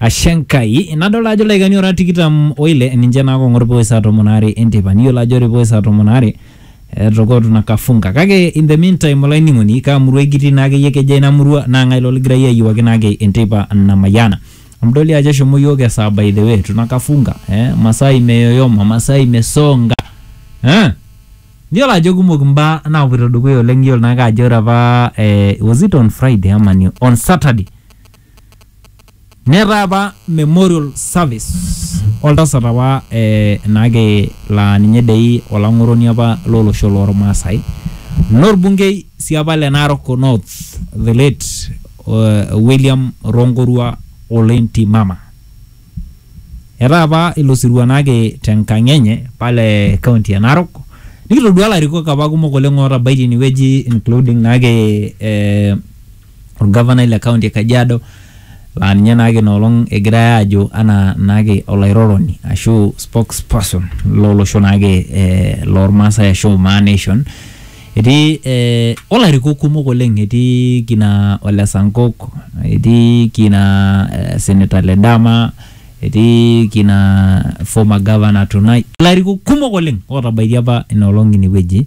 Ashe Enkai. Nadolta ajo ildaikani ora tikitam oile ninche naa kong'or pooe saa tomon aare enteipa. Niyiolo ajo ore pooe saa tomon aare etokotu ina kafunka. Kake in the meantime olainining'oni kaa murua kitii naa akeyie kejaa ina murua naa ng'ae ilo ligirai ayiewuaki naa ake enteipa namayiana. Amu idol dii ajo eshomo iyiook esaa by the way tuna kafunka eh masaa imeyoyoma, masaa imesonga eh niyiolo ajo kumok imbaa naapuoito dukuya oleng iyiolo naake ajo ore apa eh was it on Friday ama ni on Saturday Netaa apa memorial service oltasat apa naake laa ninye dei olang'oroni apa lo losho loo Lmaasai norbungei sii apa le Narok North the late William Ronkorua Ole Ntimama. Etaa apa ilo sirua naake te nkang' enye pale kaunti e Narok nikitoduaa larikok apa kumok oleng' otabaitie ine wueji including naake ee. olgavanai le kaunti e Kajiado laa ninye naake ina olong egirai aajo anaa naake olairoroni ashu spokesperson lo losho naake eh, lormaasai ashu Maa Nation. Etii eh, olarikok kumok oleng, etii kina Ole Sankok, etii kina eh, Senator Ledama, etii kina former governor Tunai, ilarikok kumok oleng otabaitie apa ina olong ine wueji.